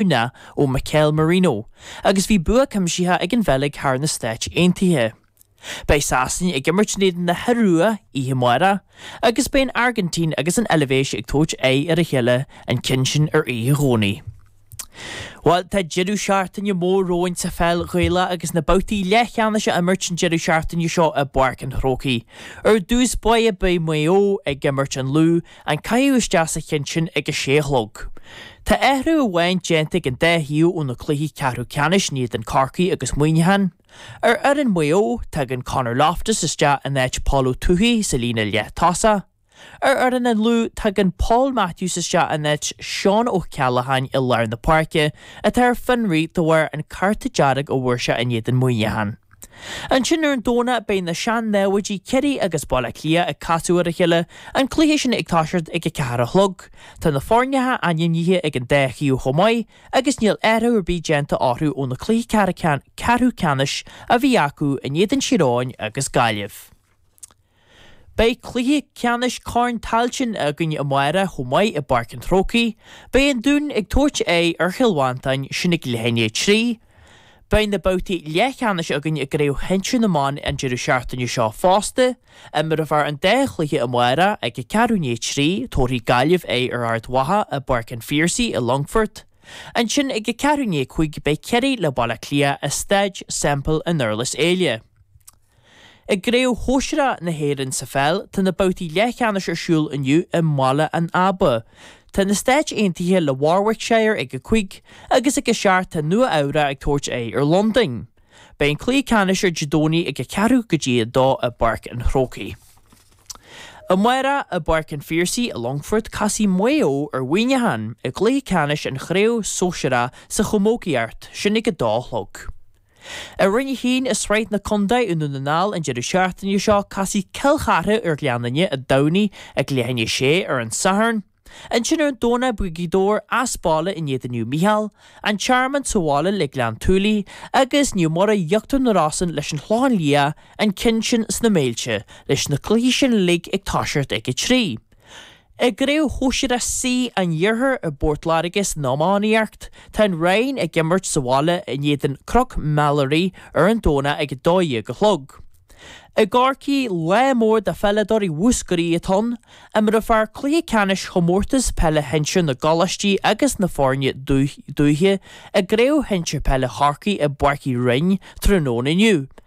Browne ó Mikel Merino agus bhí bua cuimsitheach ag an Bheilg thar na Stáit Aontaithe. Beidh Sasana ag imirt in éadan na hIorua oíche amárach agus beidh an Airgintín agus an Eilbhéis ag tabhairt aghaidh ar a chéile an ceann sin ar oíche Dhomhnaigh. Bhuel tá deireadh seachtaine mór romhainn sa pheil Ghaelach agus na babhtaí leathcheannais á imirt an deireadh seachtaine seo i bPáirc an Chrócaigh. Ar dtús báire beidh Maigh Eo ag imirt an Lú An caitheamh isteach sa cheann sin ag a sé a chlog. Tá athrú amháin déanta ag an dá thaobh ó na cluichí ceathrú ceannais in éadan Corcaigh agus Muineachán. Ar fhoireann Maigh Eo, tagann Conor Loftus isteach in áit Paul Ó Tuathaigh sa líne leath-tosa. Ar fhoireann an Lú, tagann Paul Matthews isteach in áit Seán Ó Ceallacháin i lár na páirce, atá ar fionraí de bharr an cárta dearg a bhfuair sé in éadan Muineachán. Ansin ar an Domhnach beidh na sean-námhaidí Ciarraí agus Baile Átha Cliath ag casadh ar a chéile, an cluiche sin ag toiseacht ag a ceathair a chlog. Tá na foirneacha ainmnithe ag an dá thaobh chomh maith agus níl athruithe ar bith déanta orthu ó na cluichí ceathrú ceannais a bhí acu in éadan Thír Eoghain agus Gaillimh. Beidh cluiche ceannais Corn Tailteann againn amáireach chomh maith i bPáirc an Chrócaigh. Beidh an Dún ag tabhairt aghaidh ar Chill Mhantáin, sin ag leath i ndiaidh a trí. Beidh na babhtaí leathcheannais againn i gCraobh Shinsir na mBan an deireadh seachtaine seo fosta. Imreofar an dá chluiche amáireach ag a ceathrú i ndiaidh a trí, tabharfaidh Gaillimh aghaidh ar Ard Mhacha i bPáirc an Phiarsaigh i Longfort. Ansin ag a ceathrú i ndiaidh a cúig beidh Ciarraí le Baile Átha Cliath i Staid Semple i nDurlas Éile. I gCraobh Shóisear A na hÉireann sa pheil, tá na babhtaí leathcheannais ar siúl inniu i mBaile an Aba. Tá na Stáit Aontaithe le Warwickshire ag a Cúig agus ag a Seacht tá Nua Eabhrach ag tabhairt aghaidh ar Londain. Beidh an cluiche ceannais ar Dé Domhnaigh ag a Ceathrú go dtí a Dó i bPáirc an Chrócaigh. Amárach i bPáirc an Phiarsaigh i Longfort casfaidh Maigh Eo ar Mhuineachán i gcluiche ceannais an Chraobh Sóisear A sa Chamógaíocht, sin ag a Dó a chlog. I Roinn 1 i Sraith na Contae i nDún na nGall an deireadh seachtaine seo casfaidh Cill Chartha ar Ghleann Fhinne i dTamhnaigh ag leath i ndiaidh a sé ar an Satharn. Ansin ar an Domhnach beidh Gaoth Dobhair as baile in éadan Naomh Micheál, An Tearmann sa bhaile le Gleann tSúilí agus Naomh Muire Íochtar na Rosann leis an Chlochán Liath, an ceann sin sna Méilte leis na cluichí sin uilig ag toiseacht ag a trí. I gCraobh Shóisear C an Iarthair i bPort Láirge san iománaíocht, tá an Rinn ag imirt sa bhaile in éadan Cnoc Meilearaí ar an Domhnach ag 12 a chlog. I gCorcaigh, lá mór do pheileadóirí Mhúscraí atá ann, imreofar cluiche ceannais Chomórtas Peile Shinsir na gColáistí agus na foirne dúiche i gCraobh Shinsir Peile Chorcaí i bPáirc Uí Rinn tráthnóna inniu.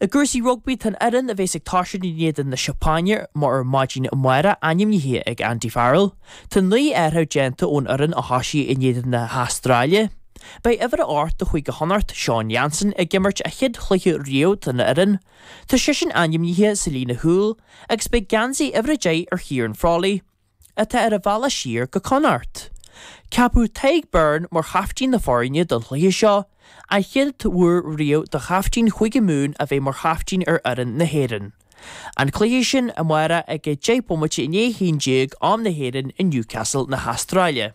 I gcúrsaí rugbaí, tá an fhoireann a bheas ag tosú in éadan na Seapáine mar ar maidin amárach ainmnithe ag Andy Farrell. Tá naoi athrú déanta ón fhoireann a thosaigh in éadan na hAstráile. Beidh uimhir a 8 de Chúige Chonnacht, Seán Jansen, ag imirt a chéad chluiche riamh don fhoireann. Tá seisean ainmnithe sa líne chúil agus beidh geansaí uimhir a deich ar Chiarán Frawley. atá ar an bhealach siar go Connacht. Ceapadh Tadhg Beirne mar chaiftín na foirne don chluiche seo, an chéad uair riamh do chaiftín Chúige Mumhan a bheith mar chaiftín ar fhoireann na hÉireann. An cluiche sin amárach ag 10 bomaite i ndiaidh a haon déag, am na hÉireann, i Newcastle na hAstráile.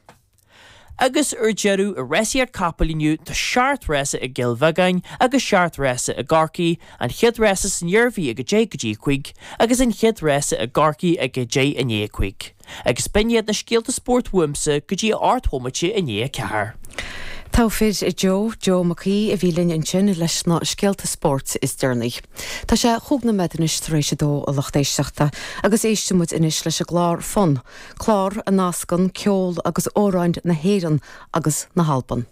Agus ar deireadh, i rásaíocht capall inniu, tá seacht rása i gCill Bheagáin agus seacht rása i gCorcaigh, an chéad rása san Iarmhí ag 10 go dtí 5, agus an chéad rása i gCorcaigh ag 10 i ndiaidh a cúig. Agus b'in iad na scéalta spóirt uaimse go dtí a hocht mbomaite i ndiaidh a ceathair. Togha fir Joe, Joe Mac Aoidh a bhí linn ansin leis na scéalta spóirt is deireanaí. Tá sé chúig nóiméad anois tar éis a dó a lucht éisteachta, agus éisteann muid anois leis an gclár Fonn, Clár a nascann ceol agus amhráin na hÉireann agus na hAlban.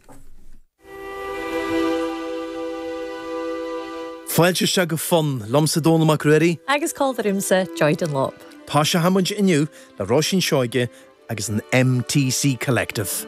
Fáilte isteach go Fonn, liomsa Dónall Mac Ruairí. Agus còmhla riumsa Joy Dunlop. Toiseochaidh muid inniu le Róisín Seoighe agus an MTC Collective.